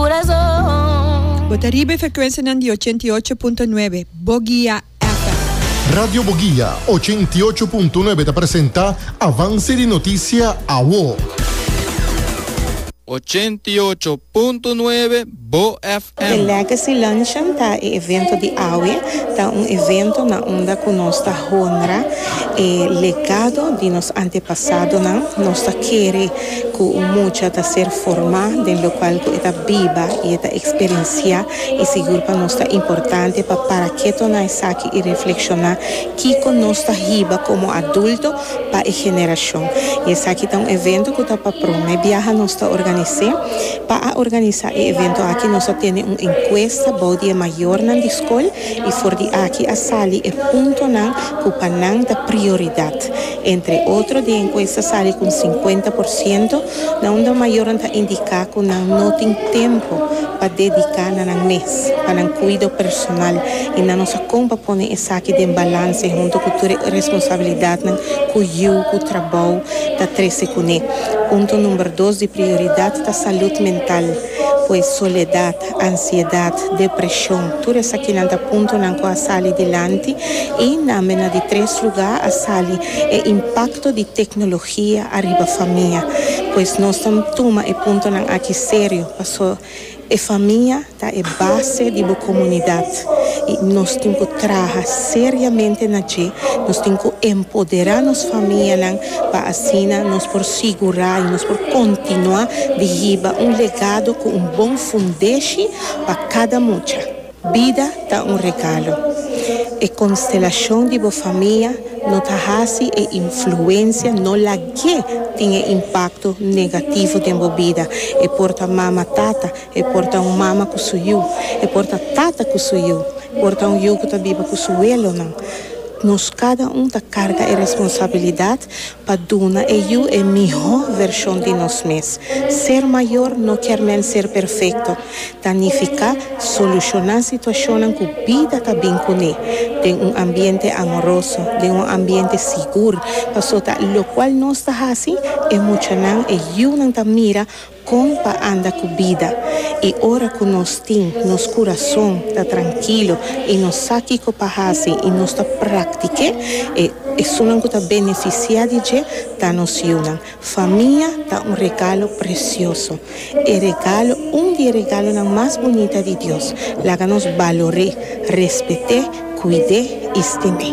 Bo ta riba e frekuensianan di ochenta i ocho punto nuebe Bogia FM. Radio Bogia ochenta i ocho punto nuebe ta presenta Avance di Noticia Awo. Ochenta i ocho punto nuebe Bo FM. E Legacy Luncheon ta e evento di awe. Ta un evento na unda cu nos ta honra e legado di nos antepasadonan. Nos ta kere cu un mucha ta ser formá den locual cu e ta biba y e ta experienciá y sigur pa nos ta importante pa para keto na esaki y reflexioná kico nos ta hiba como adulto pa e generacion. Y esaki ta un evento cu ta pa prome biaha nos ta organise. Pa a organisa e evento aki nos a tene un encuesta bou di e mayornan di scol y for di aki a sali e puntonan cu pa nan ta prioridad. Entre otro, di enkuesta sali ku un sinkuenta por siento na un dor mayornan ta indiká ku nan no tin tempu pa dediká na nan mes pa nan kuido personal i nan no sa kon pa pone esaki den balanse huntu ku tur e responsabilidatnan ku yu ku trabou ta trese kuné. Punto number dos di prioridat ta salud mental, pues soledat. ansiedat, depresion, tur esakinan ta puntonan ku a sali dilanti i nambe na di tres lugá a sali e impakto di teknologia ariba famia. Pues nos ta tuma e puntonan aki serio paso e famia ta e base di bo komunidat i nos tin ku traha seriamente na dje, nos tin ku empoderá nos famianan. pa asina nos por sigurá i nos por kontinuá di hiba un legado ku un bon fundeshi pa kada mucha. Bida ta un regalo. E konstelashon di bo famia no ta hasi e influensia no lag'é tin e impakto negativo den bo bida. E por ta mama tata, e por ta un mama ku su yu, e por ta tata ku su yu, por ta un yu ku ta biba ku su welonan. Nos kada un ta karga e responsabilidat pa duna e yu e mihó vershon di nos mes. Ser mayor no kier men ser perfekto, ta nifiká solushoná situashonnan ku bida ta bin kuné den un ambiente amoroso, den un ambiente sigur, pasota lokual nos ta hasi e muchanan, e yunan ta mira Kon pa anda ku bida i ora ku nos tin nos kurason ta trankilo i nos sa kiko pa hasi i nos ta praktik'é, e esunnan ku ta benefisiá di dje ta nos yunan. Famia ta un regalo presioso. E regalo, un di e regalonan mas bunita di Dios. Laga nos balor'é, respet'é, kuid'é i stim'é.